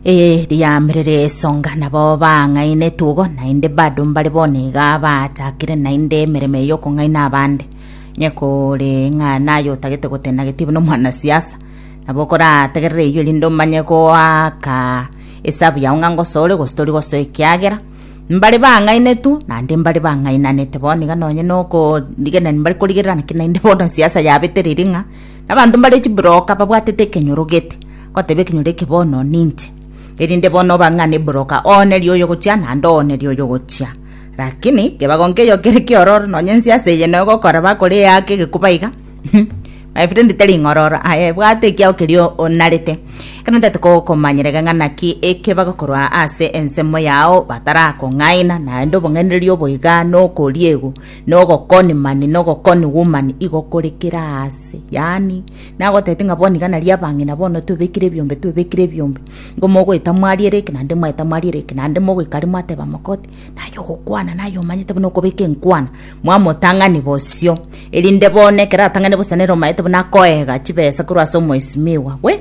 Eye riamerere esonga nabo bang'aina etugo, naende bado mbare bono iga baachakire naende emeremo eye y'okong'aina abande. Onye kore ng'a naye otagete gotenda getibu na omwanasiasa, nabo okorategerere eyio erinde omanye goaka esabu yao ng'a ngosoa ore gose tori gosoa ekiagera mbare bang'ainetwe naende mbare bang'ainanete bono iga nonye na okorigereria mbare korigererana ki naende bono siasa yabetereire ng'a na abanto mbare chiburoka babwatete ekenyoro gete. Goteba ekenyoro eke bono ninche, erinde bono obang'ane boroka oone rioyogochia naende oone rioyogochia. Rakini kebagonke eyo kere kiororo, nonye ense ase eye noe gokora bakore eake egekuba iga. My friend teri ng'ororo aye bwate ekiao kerio onarete. Ekero ntaete kogokomanyera iga ng'a naki eke bagokorwa ase ensemo yao batarakong'aina naende obong'ainereria obo iga nokoriegwa nogokoni mani nogokoni woman igo kore kera aase yaani Nagotebete ng'a bono iga nario abang'ina bono twebekire ebiombe, twebekire ebiombe, nigo mogoeta mwariere eke naende mwaeta mwariere eke, naende mogoika aria mwateba mogoti, naye ogokwana naye omanyete buna okobeka enkwana, mwamotang'ani bosio, erinde bono ekero atang'ani bosa nere omanyete buna akoeega chibesa korwa ase omoesimigwa bwe.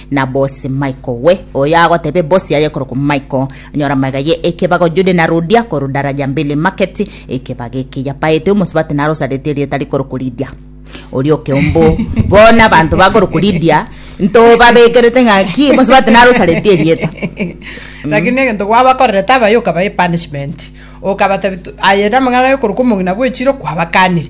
na bosi Michael we, oyo agotebe bosi aye korokwa Michael, nyora maiga ye ekebago Judy na Rudia korwa Daraja Mbili Market, ekebago eke yapaete omosubati narosaretie erieta rikorokwa Lidia. Oria okeombo bono abanto bakorokwa Lidia ntobabekerete ng'aki omosubati narosaretie erieta. lakini egento gwabakorerete abaye okabae punishment okabatebi tu- aye namang'ana aye korokwa omong'ina bwechire kwabakanire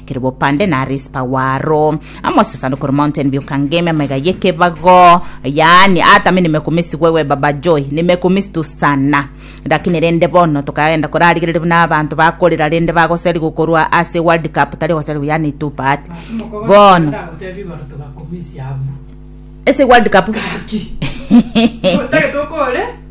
kere bopande na Rispa waro, amo ase esanduku ero Mountain View Kangemi, amaiga y'ekebago, yaani ata mi nimekumisi wewe Baba Joy, nimekumisi tu sana. Lakini rende bono tokagenda korarigereria buna abanto bakorera rende bagoseri gokorwa ase World Cup, tari goseri yaani tu but bono ase World Cup